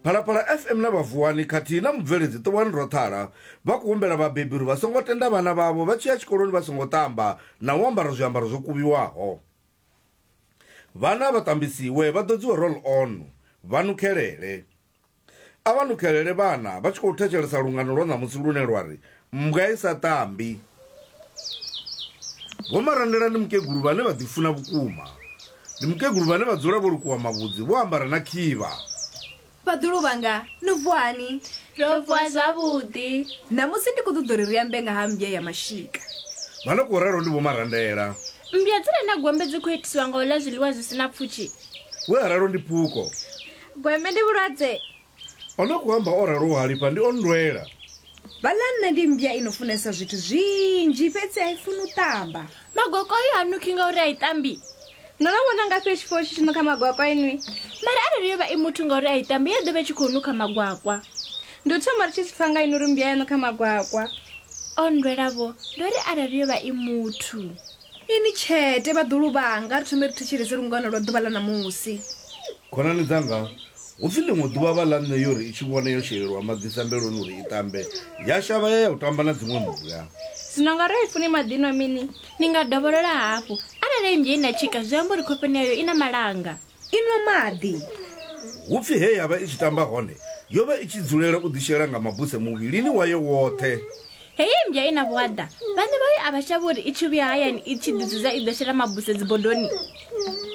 Phalaphala FM na Vhavuwani khathihi na mubveledzi Ṱuwani Rothala vha khou humbela vhabebi uri vha songo tenda vhana vhavho vha tshi ya tshikoloni vha songo ṱamba na u ambara zwiambaro zwo kuvhiwaho. Vhana vha ṱambisiwe vha ḓodziwe roll on, vha nukhelele. A vha lukelele vhana vha tshi khou thetshelesa lungano lwa ṋamusi lune lwa ri mmbwa i sa tambi. Vho Marandela ndi mukegulu vhane vha ḓifuna vhukuma. Ndi mukegulu vhane vha dzula vho lukuwa mavhudzi vho ambara na khivha. Vhaḓulu vhanga, no vuwa hani? Ro vuwa zwavhuḓi. Ṋamusi ndi khou ṱoḓa uri ri ambe nga ha mmbya ya mashika. Vha no khou ralo ndi Vho Marandela. Mmbya dzi re na gombe dzi khou itiswa nga u ḽa zwiḽiwa zwi si na pfushi. We a ralo ndi Phuko. Gweme ndi vhulwadze. O no kuamba o ralo Halifha ndi o nndwela. Vhalanna ndi mmbya i no funesa zwithu zwinzhi fhedzi a i funi u ṱamba. Magwakwayu ha nukhi ngauri a i ṱambi. No no vhona ngafhi ri tshi pfa hu tshi tshi nukha magwakwa inwi? Mara arali yo vha i muthu ngauri a i ṱambi ya ḓo vha i tshi khou nukha magwakwa. Ndi u thoma ri tshi zwi pfa nga inwi uri mmbya ya nukha magwakwa. O nndwela-vho, ndo ri arali yo vha i muthu. Inwi tshete, vhaḓuhulu vhanga, ri thomeni ri thetshelese lungano lwa ḓuvha ḽa ṋamusi. Khonani dzanga, hu pfi ḽiṅwe ḓuvha vha ḽa nṋe yo ri i tshi vhona yo shelelwa maḓi sambeloni uri i ṱambe, ya shavha ya ya u tamba na dziṅwe mmbwa. Zwino nga arali funi maḓi nwa mini? Ni nga dovholola hafhu. Arali ennzhe i na tshika, zwi amba uri khofheni yayo i na malanga. I nwa maḓi. Hu pfi he ya vha i tshi tamba hone, yo vha i tshi dzulela u ḓishela nga mabuse muvhilini wayo woṱhe. Heyi mmbwa i na vhuaḓa vhane vhayo a vha shavhi uri i tshi vhuya hayani i tshi ḓidzudza i ḓo shela mabuse dzibodoni.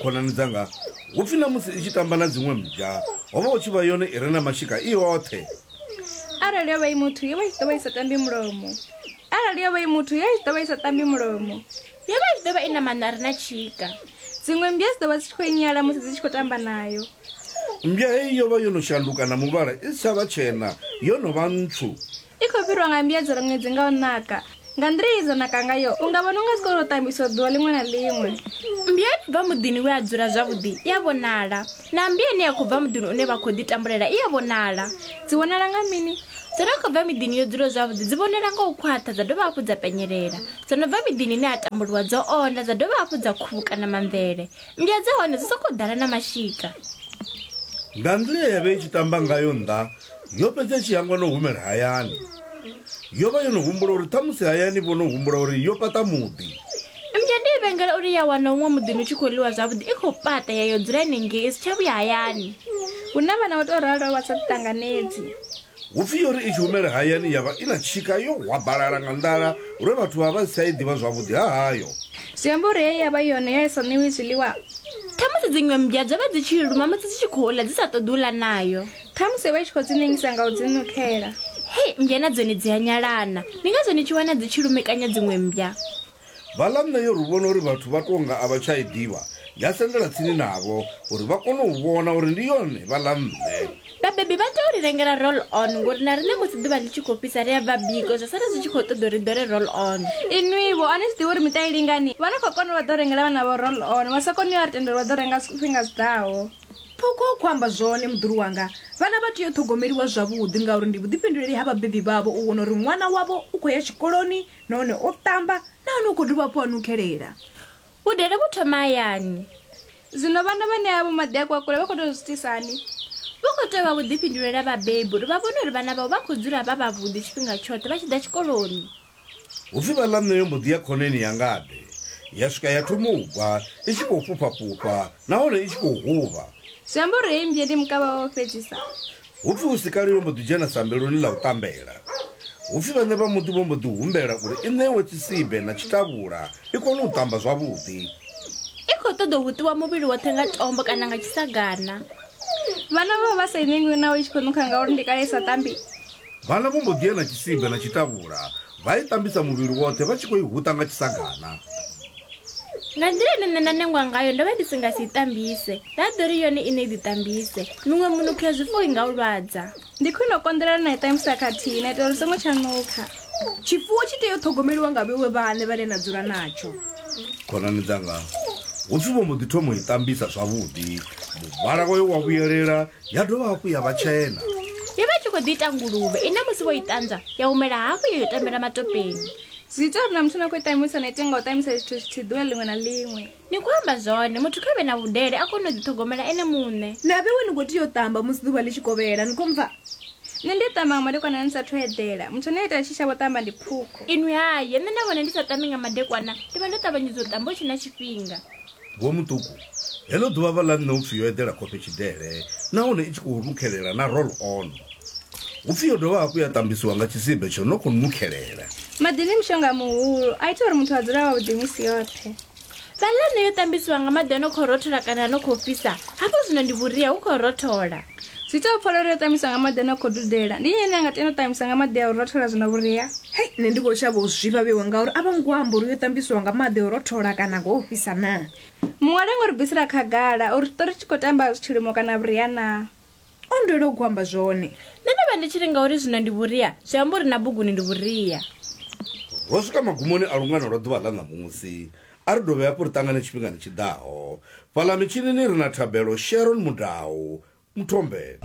Khonani dzanga, hu pfi na musi i tshi tamba na dziṅwe mmbwa ho vha hu tshi vha yone i re na mashika i yoṱhe. Arali yo vha i muthu yo vha i tshi ḓo vha i sa tambi mulomo. Arali yo vha i muthu yo vha i tshi ḓo vha i sa tambi mulomo. Yo vha i tshi ḓo vha i na maṋo a re na tshika. Dziṅwe mmbwa dzi ḓo vha dzi tshi khou i nyala musi dzi tshi khou tamba nayo. Mmbwa heyi yo vha yo no shanduka na muvhala i si tsha vha tshena, yo no vha ntswu. I khou fhirwa nga mbiadzelo ṅwedzi nga u naka. Nga nḓila ye dza naka ngayo, u nga vhona u nga dzi khou tou tambiswa ḓuvha ḽiṅwe na ḽiṅwe. Mmbwa i bva muḓini we a dzula zwavhuḓi i a vhonala, na mmbwa ine ya khou bva muḓini une vha khou ḓitambulela i a vhonala. Dzi vhonala nga mini? Dzo no khou bva miḓini yo dzulaho zwavhuḓi dzi vhonala nga u khwaṱha dza dovha hafhu dza penyelela. Dzo no bva miḓini ine ha tambuliwa dzo onda dza dovha hafhu dza khuvhukana mamvele. Mmbwa dza hone dzi sokou ḓala na mashika. Nga nḓila ye ya vha i tshi tamba ngayo nnḓa Yo fhedza i tshi hangwa na u humela hayani. Yo vha yo no humbula uri ṱhamusi hayani vho no humbula uri yo fhaṱa muḓi. Mmbwa ndi i vhengela uri ya wana huṅwe muḓini hu tshi khou ḽiwa zwavhuḓi i khou fhaṱa ya yo dzula henengei i si tsha vhuya hayani. Hu na vhana vha tou ralo vha sa ḓiṱanganedzi. Hu pfi yo ri i tshi humela hayani ya vha i na tshika yo hwabalala nga nḓala lwe vhathu vha vha vha si tsha i ḓivha zwavhuḓi ha hayo. Zwi amba uri he ya vha yone ya i sa ṋewi zwiḽiwa. Ṱhamusi dziṅwe mmbwa dzo vha dzi tshi i luma musi dzi tshi khou ḽa dzi sa ṱoḓi u ḽa nayo. Khamusi vha tshi khou dzi nengisa nga u dzi nukhela. Hei, mmbwa na dzone dzi a nyalana. Ndi ngazwo ni tshi wana dzi tshi lumekanya dziṅwe mmbwa. Balaam na Yoru vhona uri vhathu vha tou nga a vha tsha i ḓivha, ya sendela tsini navho uri vha kone u vhona uri ndi yone vha ḽa mme. Vhabebi vha tou ri rengela roll-on ngori na riṋe musi ḓuvha ḽi tshi khou fhisa ri a bva biko zwa sala zwi tshi khou ṱoḓa uri ri ḓole roll-on. Inwi-vho, a ni zwi ḓivhi uri miṱa i lingani? Vha no khou kona u vha ḓo rengela vhanavho roll-on, vha sa koni u ya ri tendela u vha ḓo renga zwifhinga zwi ḓaho. Ṱhukho khou amba zwone muḓulu wanga. Vhana vha tea u ṱhogomeliwa zwavhuḓi ngauri ndi vhuḓifhinduleli ha vhabebi vhavho u vhona uri ṅwana wavho u khou ya tshikoloni nahone o ṱamba nahone u khou dovha hafhu a nukhelela. Vhudele vhu thoma hayani. Zwino vhana vha ṋea vho maḓi a kwakule vha khou tea u zwi itisa hani? Vhu khou tea u vha vhuḓifhinduleli ha vhabebi uri vha vhone uri vhana vhavho vha khou dzula vha vhavhuḓi tshifhinga tshoṱhe vha tshi ḓa tshikoloni. Hu pfi vhaḽa nṋe yo mbo ḓi ya khoneni ya ngade ya swika ya thoma u bva i tshi khou fhufha fhufha nahone i tshi khou huvha. Zwi amba uri heyi mmbye ndi mukavha wawe fhedzisa. Hu pfi hu si kale yo mbo ḓi dzhena sambeloni ḽa u ṱambela. Hu pfi vhaṋe vha muḓi vho mbo ḓi humbela uri i ṋewe tshisibe na tshitavhula i kone u ṱamba zwavhuḓi. I khou ṱoḓa u hutiwa muvhili woṱhe nga tombo kana nga tshisagana. Vhana vho vha vha sa i ṋengwi naho i tshi khou nukha ngauri ndi kale i sa ṱambi. Vhana vho mbo ḓi ya na tshisimbe na tshitavhula vha i ṱambisa muvhili woṱhe vha tshi khou i huṱa nga tshisagana. Nga nḓila ine nṋe nda nengwa ngayo ndo vha ndi si nga si i ṱambise, nda ḓo ri yone iṋe i ḓiṱambise. Miṅwe minukho ya zwifuwo i nga u lwadza. Ndi khwine u konḓelela na i ṱambisa khathihi na itela uri u songo tsha nukha. Tshifuwo tshi tea u ṱhogomeliwa nga vhewe vhaṋe vhane na dzula natsho. Khonani dzanga, hu pfi vho mbo ḓi thoma u i ṱambisa zwavhuḓi, muvhala wayo wa vhuyelela ya dovha hafhu ya vha tshena yo vha i tshi khou ḓi ita nguluvhe ine musi vho i ṱanzwa ya humela hafhu yo yo tambela matopeni zwi ita uri na muthu na khou ṱamusa na ite nga u ṱamusa zwithu zwithihi ḓuvha ḽiṅwe na ḽiṅwe ni khou amba zwone muthu kha vhe na vhudele a kone u ḓiṱhogomela ene muṋe na vhewe ni khou tea u ṱamba musi ḓuvha ḽi tshi kovhela ni khou mpfa nṋe ndi a ṱamba nga madekwana ni sathu eḓela muthu ane a ita tshi shavho ṱamba ndi phukho inwi haye nṋe na vhone ndi sa ṱambi nga madekwana ndi vha ndo ṱavhanyedza u ṱamba hu tshe na tshifhinga Vho Muṱuku, Heḽo ḓuvha vha ḽa nṋe hu pfi yo eḓela khofhe tshidele nahone i tshi khou nukhelela na roll on. Hu pfi yo dovha hafhu ya ṱambisiwa nga tshisibe tsho no khou nukhelela. Maḓi ndi mushonga muhulu, a ita uri muthu a dzule a wavhuḓi misi yoṱhe. Vha ḽa nṋe yo ṱambisiwa nga maḓi a no khou rothola kana a no khou fhisa, hafho zwino ndi vhuria hu khou rothola. Zwi ita u pfa lwo ri o ṱamiswa nga maḓi a no khou dudela. Ndi nnyi ane a nga tenda u ṱamiswa nga maḓi a u rothola zwi na vhuria? Hei, nṋe ndi khou shavha u zwifha vhewa ngauri a vho ngo amba uri yo ṱambiswa nga maḓi a u rothola kana nga o fhisa naa. Muṅwe a lenga u ri bvisela khagala uri tshiṱori tshi khou tamba tshilimo kana vhuria naa. O nndwela u gwamba zwone. Nṋe ndo vha ndi tshi ri ngauri zwino ndi vhuria, zwi amba uri na buguni ndi vhuria. Ro swika magumoni a lungano lwa ḓuvha ḽa ṋamusi. A ri dovhe hafhu ri ṱangane tshifhingani tshi ḓaho. Fhaḽa mitshinini ri na thabelo, Sharon Mudau, Muthombeni.